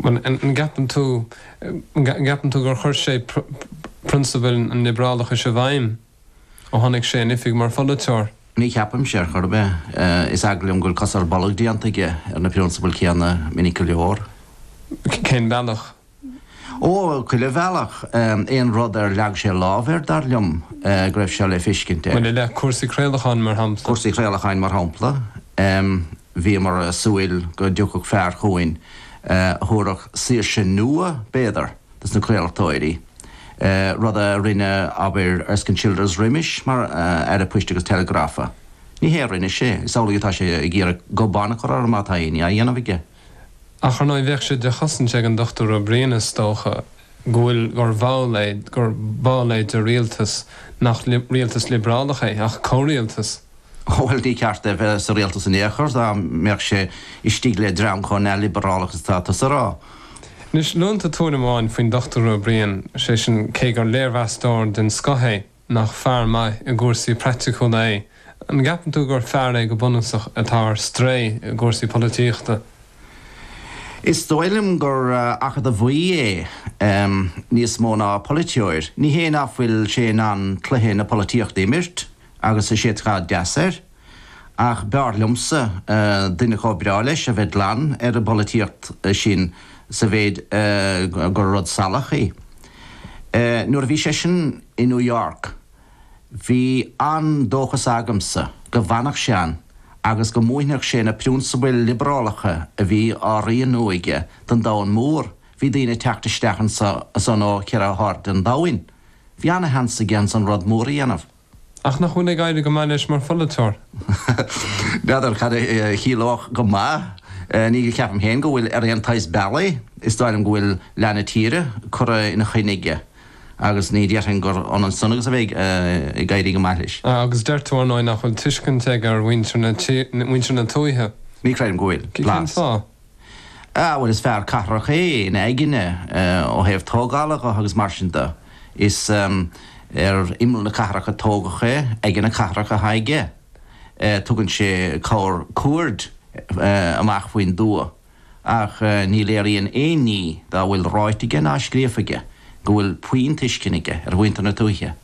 An gceapann tú, an gceapann tú gur chuir sé prionsabail an liobrálachais i bhfeidhm ó tháinig sé in oifig mar pholaiteoir? Ní cheapaimse é ar chor ar bith. Is eagal liom go bhfuil cos ar bolg déanta aige ar na prionsabail céanna minic go leor. Cén bealach? Ó, chuile bhealach. Aon rud ar leag sé lámh air, dar liom go raibh seo le feiscint air. Maidir le cúrsaí craolacháin, mar shampla? Cúrsaí craolacháin, mar shampla. Bhíomar ag súil go dtiocfadh fear chugainn a thabharfadh saoirse nua, b'fhéidir, dos na craoltóirí, rud a rinne, abair, Erskine Childers roimis mar Aire Poist agus Teileagrafa. Ní hé a rinne sé. Is amhlaidh atá sé ag iarraidh goban a chur orthu má tá éinne á dhéanamh aige. Ach, ar ndóigh, bheadh sé de chosaint ag an Dochtúir Ó Briain, is dócha, go bhfuil, gur bhall é, gur ball é de rialtas nach rialtas liobrálach é ach comhrialtas. Bhuel, níor cheart dó a bheith sa rialtas in aon chor, dá mbeadh sé istigh le dream chomh neamhliobrálach is atá tusa a rá. Anois, luann tú tuairim amháin faoin Dochtúir Ó Briain, sé sin, cé gur léirmheastóir den scoth é, nach fear maith i gcúrsaí praiticiúla é. An gceapann tú gur fear é go bunúsach atá ar strae i gcúrsaí polaitíochta? Is dóigh liom gur acadamhaí é níos mó ná polaiteoir. Ní hé nach bhfuil sé in ann cluiche na polaitíochta a imirt, agus is é atá deas air, ach b'fhearr liomsa duine chomh breá leis a bheith glan ar an bpolaitíocht sin sa méid gur rud salach í. Nuair a bhí seisean i New York bhí an-dóchas agamsa go bhfanfadh sé ann agus go múinfeadh sé na prionsabail liobrálacha a bhí á rianú aige don domhan mór, bhí daoine ag teacht isteach ansan ó cheithre hairde an domhain. Bhí an-sheans aige ansan rud mór a dhéanamh. Ach nach bhfuil ag éirí go maith leis mar pholaiteoir? N'fheadar cad a chiallódh 'go maith'. Ní cheapaim féin go bhfuil ar aon tsaghas bealaigh. Is dóigh liom go bhfuil leath na tíre curtha ina choinne aige agus ní déarfainn gur ionann san agus a bheith ag éirí go maith leis. Agus deir tú, ar ndóigh, nach bhfuil tuiscint aige ar mhuintir na tuaithe. Ní chreidim go bhfuil. Cén fáth? Bhuel, is fear cathrach é ina aigne ó thaobh tógála dho agus mar sin de. Is ar imeall na cathrach a tógadh é, aigne na cathrach atá aige. Tugann sé corrchuaird amach faoin dtuath ach ní léiríonn aon ní dá bhfuil ráite aige ná scríofa aige go bhfuil puinn tuiscine aige ar mhuintir na tuaithe.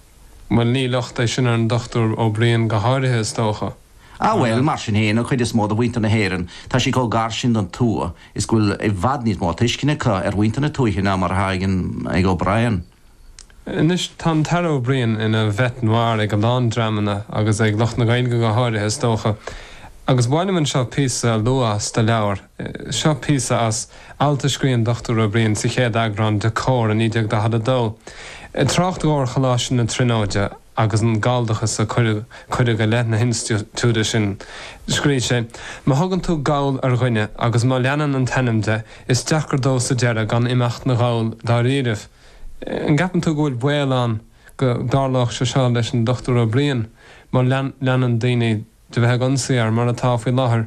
Bhuel, ní locht é sin ar an Dochtúir Ó Briain go háirithe, is dócha, Á, bhuel, mar sin féin, an chuid is mó de mhuintir na hÉireann, tá siad chomh gar sin don tuath is go bhfuil i bhfad níos mó tuisceana acu ar mhuintir na tuaithe ná mar atá ag O'Brien. Anois, tá an tAire O'Brien ina bhête noir ag a lán dreamanna, agus ag lucht na Gaeilge go háirithe, is dócha, agus ba mhaith liom anseo píosa a lua as do leabhar, Seo píosa as alt a scrígh an Dr Ó Briain sa chéad eagrán de Comhar in 1942. Ag trácht dhó ar Choláiste na Tríonóide agus an galldachas a cuireadh i leith na hinstitiúide sin, scrígh sé, 'Má thugann tú Gall ar dhuine agus má leanann an t-ainm de, is deacair dó sa deireadh gan imeacht 'na Ghall dáiríribh. An gceapann tú go bhfuil baol ann go dtarlódh sé seo leis an Dr Ó Briain má leanann daoine de bheith ag ionsaí air, mar atá faoi láthair.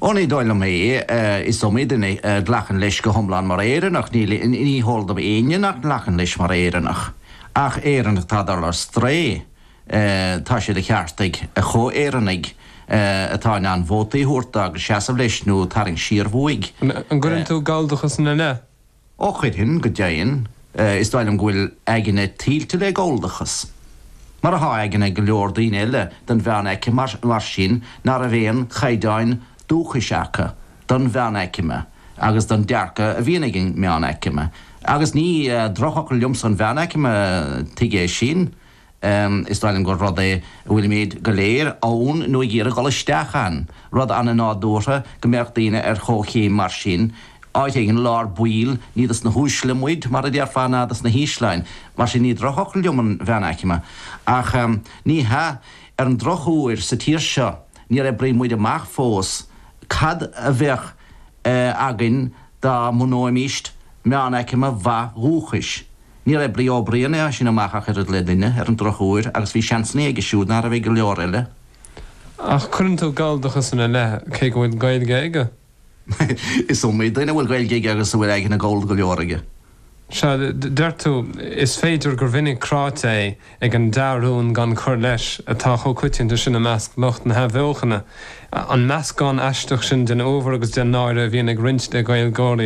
Ó, ní dóigh liom é. Is iomaí duine a ghlacann leis go hiomlán mar Éireannach. Ní, ní heol dom éinne nach nglacann leis mar Éireannach. Ach Éireannach atá ag dul ar strae, tá sé de cheart ag a chomh-Éireannaigh atá in ann vótaí a thabhairt dó agus seasamh leis nó tarraingt siar uaidh. An gcuireann tú galldachas ina leith? Ó chuirfinn go deimhin, is dóigh liom go bhfuil a aigne tuilte le Galldachas, mar atá aigne go leor daoine eile den mheánaicme, mar sin, ná raibh aon chaighdeáin dúchais acu don mheánaicme agus don dearcadh a bhíonn ag an meánaicme. Agus ní drochfhocal liomsa an mheánaicme, tuige sin? Is dóigh liom gur rud é a bhfuilimid go léir ann nó ag iarraidh dul isteach ann, rud ana-nádúrtha go mbeadh daoine ar chomhchéim mar sin, áit éigin i lár baill, ní dos na huaisle muid, mar a déarfá, ná dos na hísleáin, mar sin ní drochfhocal liom an mheánaicme, ach ní hea, ar an drochuair, sa tír seo, níor oibrigh muid amach fós cad a bheadh againn dá mbunóimist meánaicme mhaith dhúchais. Níor oibrigh an Brianach é sin amach ach oiread le duine, ar an drochuair, agus bhí seansanna aige siúd ná raibh ag go leor eile. Ach cuireann tú Galldachas ina leith, cé go bhfuil Gaeilge aige? Is iomaí duine a bhfuil Gaeilge aige agus a bhfuil aigne Gallda go leor aige. Sea, deir tú, is féidir gur mhinic cráite é ag an dea-rún gan cur leis atá chomh coitianta sin i measc lucht na hathbheochana, an meascán aisteach sin den uabhar agus den náire a bhíonn ag roinnt de Ghaeilgeoirí.